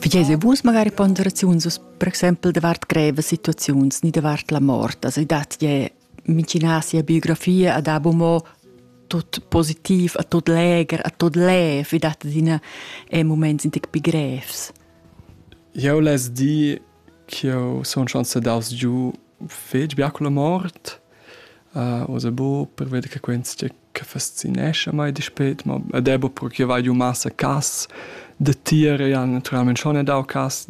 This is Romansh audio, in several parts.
Figei vus magari ponderaziuns us, per exempel davart greve situaziuns, ni davart la mort. Also ich dachte, je micinasi a biografia ad abumò tot positiv a tot leger, a tot lev. Ich dachte, dine e moments sind pi grevs. Eu les di ch'eu sun schon sedaus giù fetg bia con la mort. Uh, osa bo per veder che quens che che fascinescha mei dispet, ma ed è proprio che vai giu massa cass da tier e han naturalment schon dau cass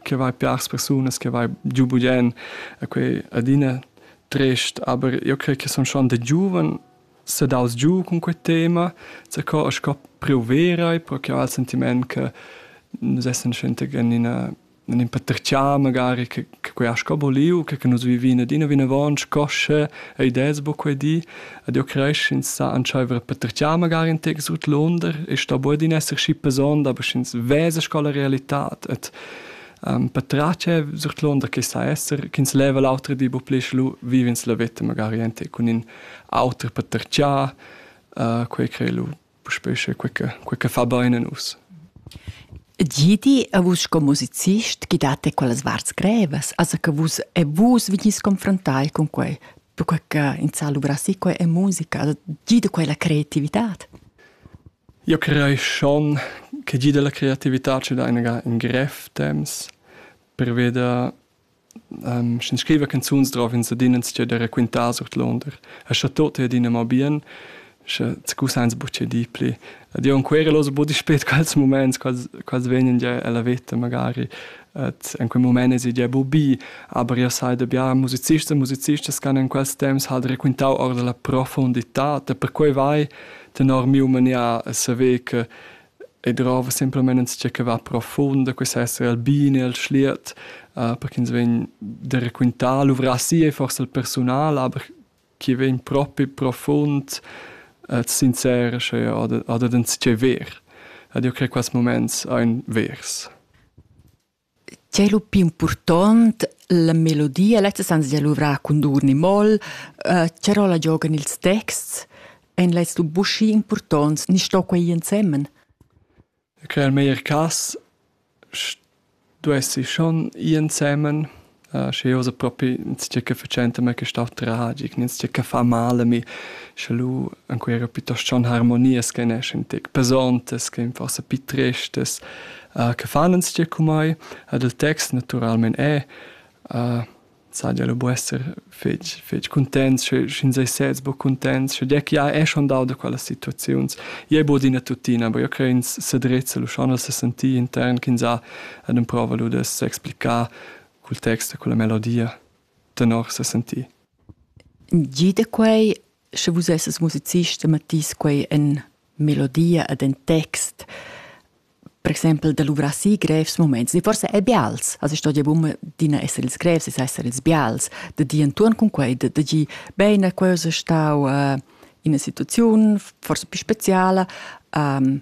che vai piars persunas che vai giu bugen e quei adina trist, aber io crei che son schon da giuven sedaus giu cun quei tema, zaco e sco preu vera, pro che ho il sentiment che nus essan schenta gnanina non impattercià magari che che quei ha sco boliu, che che nus vivin adina vinavon scosce e ideas bo quei di, ed io cresch ins sa entscheiver a pattercià magari in tec sut l'onder e sto bo adina esser schi pesond, aber sch'ins vesa sco la realità et ähm, patratge sut l'onder che sa esser, ch'ins leva l'autra di bo pli lu viv'ins la veta magari ente cun in auter pattercià, äh, quei crei lu puspè sche quei che, quei che fa bene a nus. Gidi a vus sco musicist chi date quellas varts grevas, also che vus e vus vegnis confrontai con quei, perché che in sa luvrassi quei è musica, also gidi quella creatività. Io crei schon che gida la creatività ci dà in gref temps per veder Sch'ins scriva canzuns drov ins adina entstier da raquintar surtlunder. E scha tot ei adina mo bien, sche tgusains buc tgei dir pli. Ed io encuera lò buc dispet quels muments, quels, quels vegnan gia ella veta magari. Et en quei mument es gia buc bi, aber io sai da bia musicists e musicistas che han in quels temps halt raquintau ord la profondità, e perquei vai tenor miu manier a saver che I drova simplamain insatge che va profund e quai sa esser il bin e il schliet per ch'ins vegn da raquintar luvrà si e forsa il persunal, aber chi vegn propi profund sincerescha ja oder oder insatgè vair. Ed eu craj quels mumaints aint vers. Tgei lu pli impurtont, la melodia, lezza san sia luvrar cun dur ni moll, tge rolla giogan ils texts, ein lezs lu buca impurtonts ni sto quei ensemen? Quel meglier cass stuessi schon ir ensemen. Schi osa propi insatgè che fatschenta mê quist'au tragic, insatgè che fa mal a mi, sche lu ancuera piuttost schon harmonias che neschan tec pesontas, che forsa pi tristas, che fan insatgè cu mai. Ed il text natüralmaing è saja lu bu esser fetg, fetg cuntents, sche, sch'ins ei sez bo cuntents, sche dir che ja è schon dau da quellas situaziuns, je bod ina tutina, aber io cre ins sedrezza lu schon se senti intern ch'ins ha ad emprova lu de s'explicar cul text e culla melodia tenor se senti. Gi da quei Sche vus esses musicist, mettís quei en melodia ed en text. Per exempel da luvrar si grevs moments. E forse è bials. Also sto ja bumma d'ina essere ils grevs, es essere ils bials. Da di entuorn cun quei, da, da di bene, quella stau uh, in una situazione forse più speciale. Um,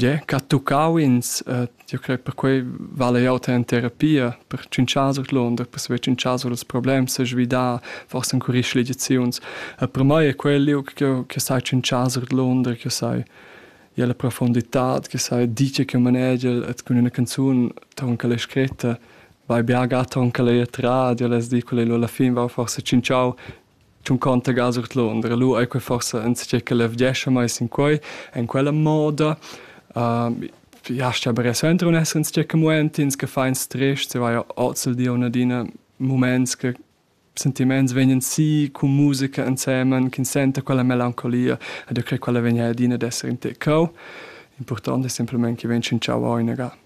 Ie, ch'ha tuccau ins, jeu crei perquei vala ei auter en terapia per tschintschar surluonder, per saver tschintschar sur ils problems, sesvidar, forsa encurir schligiziuns. E per mei ei quel liug ch'jeu che sai tschintschar surluonder, che sai ir alla profunditad, che sai dir tgei che manegiel e cun ina canzun tonca'l ei scretta, vai bia ga tonca'l eir trat, jeu less dir quella lu alla fin, vau forsa tschintschau Tuncunter gas ord Londra. Lu ei quei forsa enzatgei che levgescha mei sin quei, en quella moda. Jastja bere suenter un esser enzatgei che muentins, che fa in stress, se vai ozzel di un adina muments che sentiments vegnan si cun musica ensemen, ch'ins senta quella melancolia ed eu crei quella vegn adina ad esser in te cheu. Impurtant ei semplamein che vegn tschintschau o inaga.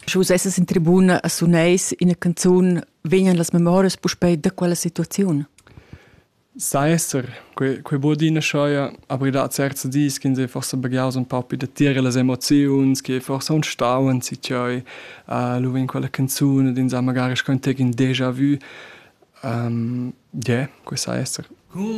Sche vus essas in tribuna a suneis ina canzun, vegnan las memorias puspei da quella situaziun? Sai esser, quei, quei buca d'ina scheia, aber da certs dis ch'ins ei forsa baghiaus un paupi da tier las emoziuns che forsa un stau en si tgei, uh, lu vegn quella canzun ed ins ha magari schon tec in déjà vu. Um, yeah, quei sai esser.